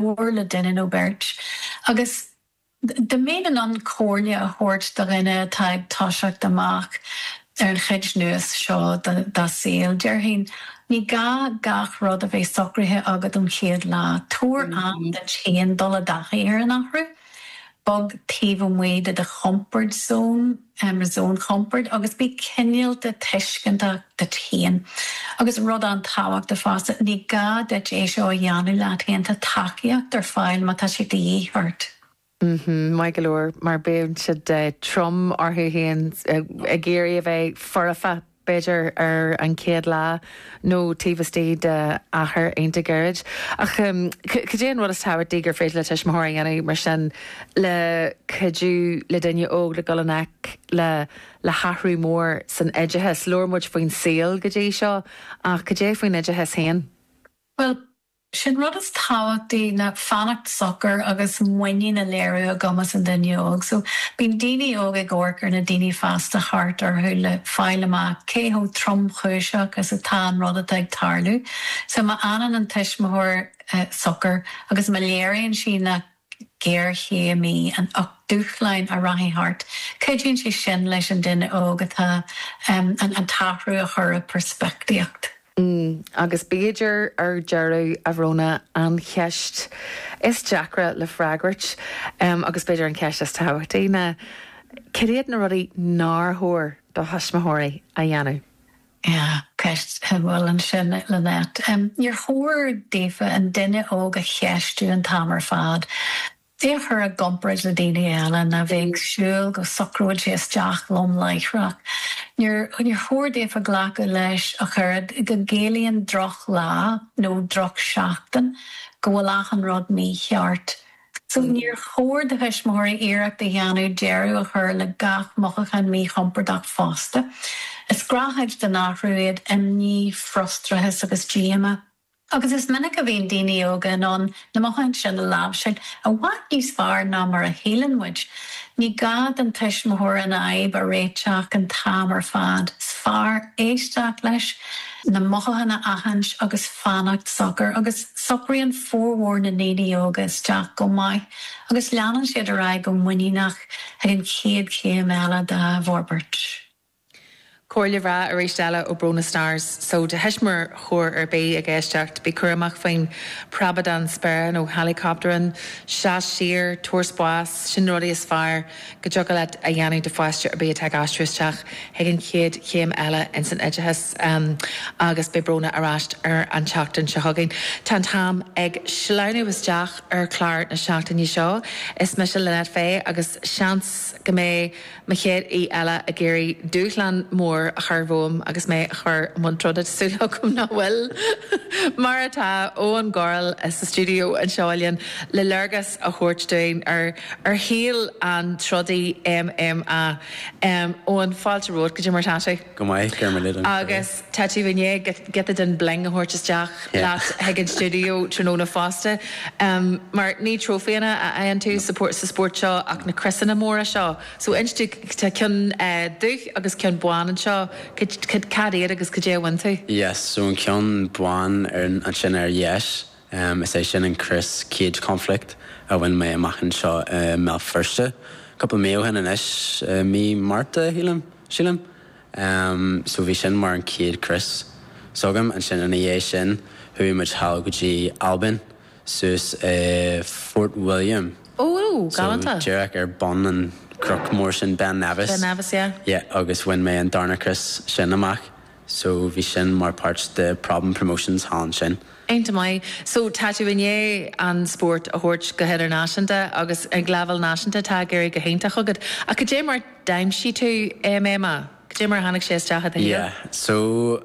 mhór le duine nó beirt agus dá mbeinn in ann comhairle a thabhairt do dhuine atá ag toiseacht amach ar an chuid nua seo dá saol, déarfainn ní gá gach rud a bheith socraithe agat ón chéad lá. Tabhair am duit féin dul i dtaithí ar an athrú. Bog taobh amuigh de do chomfort zone. am ra zón compoird agus bí cinéalta tuisceantach duit féin. Agus rud an-tábhachtach fosta, ní gá duit é seo a dhéanamh leat féin, tá tacaíocht ar fáil má tá sé de dhíth ort. Mm-hmm, maith go leor, mar bíonn siad trom orthu féin ag iarraidh a bheith foirfe. b'fhéidir ar an chéad lá nó taobh istigh de achar iontach gairid. Ach cad é an rud is tábhachtaí gur féidir le tuismitheoir a dhéanamh mar sin le cuidiú le duine óg le dul i ngleic le hathrú mór san oideachas? Labhair muid faoin saol go dtí seo ach cad é faoin oideachas féin? Bhuel, Is é an rud is tábhachtaí ná fanacht socair agus muinín a léiriú i gcumas an duine óg. So, bíonn daoine óg ag amharc ar na daoine fásta thart orthu le fáil amach cé chomh tromchúiseach is atá an rud atá ag tarlú. So, má fhanann an tuismitheoir socair agus má léiríonn sí nach. géarchéim atá ann ach dúshlán a rachaidh thart. Cuidíonn sé sin leis an duine óg atá an an t-athrú a chur i bpeirspictíocht. Mm, agus b'fhéidir ar deireadh, a Bhrónagh, an cheist is deacra le freagairt, em, agus b'fhéidir an cheist is tábhachtaí ná cad iad na rudaí nár chóir do thuismitheoirí a dhéanamh? Yeah, ceist a bhfuil ansin, Lynette. Níor chóir daofa an duine óg a cheistiú an t-am ar fad, é a chur i gcomparáid le daoine eile, ná bheith ag súil go socróidh sé isteach lom láithreach. Níor chóir daofa glacadh leis ach oiread go gciallaíonn drochlá nó drochsheachtain go bhfuil achan rud mícheart. So níor chóir do thuismitheoirí iarracht a dhéanamh deireadh a chur le gach mothúchán míchompordach fosta. Is gnáthchuid den athrú iad imní, frustrachas agus díomá agus is minic a bhíonn daoine óga in ann na mothúcháin sin a láimhseáil i bhfad níos fearr ná mar a shíleann muid. Ní gá don tuismitheoir an fhadhb a réiteach an t-am ar fad. Is fearr éisteacht leis. na mothúcháin a aithint agus fanacht socair agus socraíonn formhór na ndaoine óga isteach go maith agus leanann siad ar aghaidh go muiníneach chuig an chéad chéim eile dá bhforbairt. Comhairle bhreá arís eile ó Brónagh Starrs. So, do thuismitheoir ar bith ag éisteacht, bí cúramach faoin bpreabadán spéire nó helicoptering, seas siar, tabhair spás, sin na rudaí is fearr, Go dtiocfadh leat a dhéanamh do pháiste ar bith atá ag aistriú isteach chuig an chéad chéim eile ins an oideachas agus beidh Brónagh ar ais ar an tseachtain seo chugainn. Tá an t-am ag sleamhnú isteach ar chlár na seachtaine seo. Is mise Lynette Fay agus seans go mbeidh mo chéad aoi eile ag iarraidh dúshlán mór a chur romham agus mé a chur i mbun troda. Tá súil agam nach bhfuil mar tá Eoghan Gorrell sa stiúideo anseo linn le léargas a thabhairt dúinn ar shaol an trodaí MMA. Eoghan, fáilte romhat, cad é mar atá tú? Go maith, go raibh míle maith agat. Agus tá tú i ndiaidh giota den bling a thabhairt isteach leat chuig an stiúideo tráthnóna fosta, mar ní trófaeanna a fhaigheann tú sa spórt seo ach na criosanna móra seo. So inis dúinn, tá ceann dubh agus ceann bán anseo, cad iad agus cad é a bhain tú? Yes, so an ceann bán ansin ar dheis. Um, is é sin an crios, cage conflict, a bhain mé amach anseo i mBéal Feirste cúpla mí ó shin anois, i mí Márta, sílim. Um, so bhí sin mar an chéad crios s'agam. Ansin ina dhiaidh sin, chuaigh muid thall go dtí Albain, suas i Fort William. Ó, ó, So galánta. díreach ar bun an chnoic mhóir sin, Ben Nevis. Ben Nevis, yeah. Yeah, agus bhain mé an darna crios sin amach. So bhí sin mar páirt de Problem Promotions thall ansin. An-mhaith. So tá tú i ndiaidh an spórt a thabhairt go hidirnáisiúnta agus ag leibhéal náisiúnta tá ag éirí go hiontach agat. Ach cad é mar d'aimsigh tú MMA? Cad é mar a tháinig sé isteach i do shaol? Yeah. So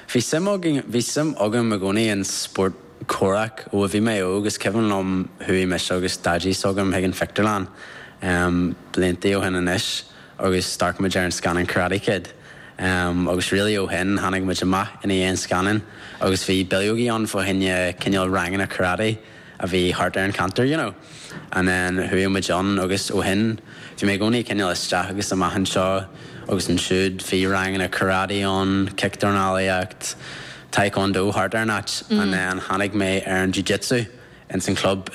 bhí suim againn, bhí suim agam i gcónaí in spórt comhraic ó a bhí mé óg. Is cuimhin liom chuaigh mise agus daidí s'agam chuig an pictiúrlann, em, blianta ó shin anois. agus d'amharc muid ar an scannán Karate Kid agus really ó shin tháinig muid amach ina dhiaidh an scannáin agus bhí bileogaí ann fá choinne cineál ranganna karate a bhí thart ar an cheantar you know and then chuaigh muid ann agus ó shin bhí mé i gcónaí cineál isteach agus amach anseo agus ansiúd bhí ranganna karate ann, cic-dornálaíocht, tae-kwon-do thart ar an áit and then tháinig mé ar an jiu-jitsu ins an club ina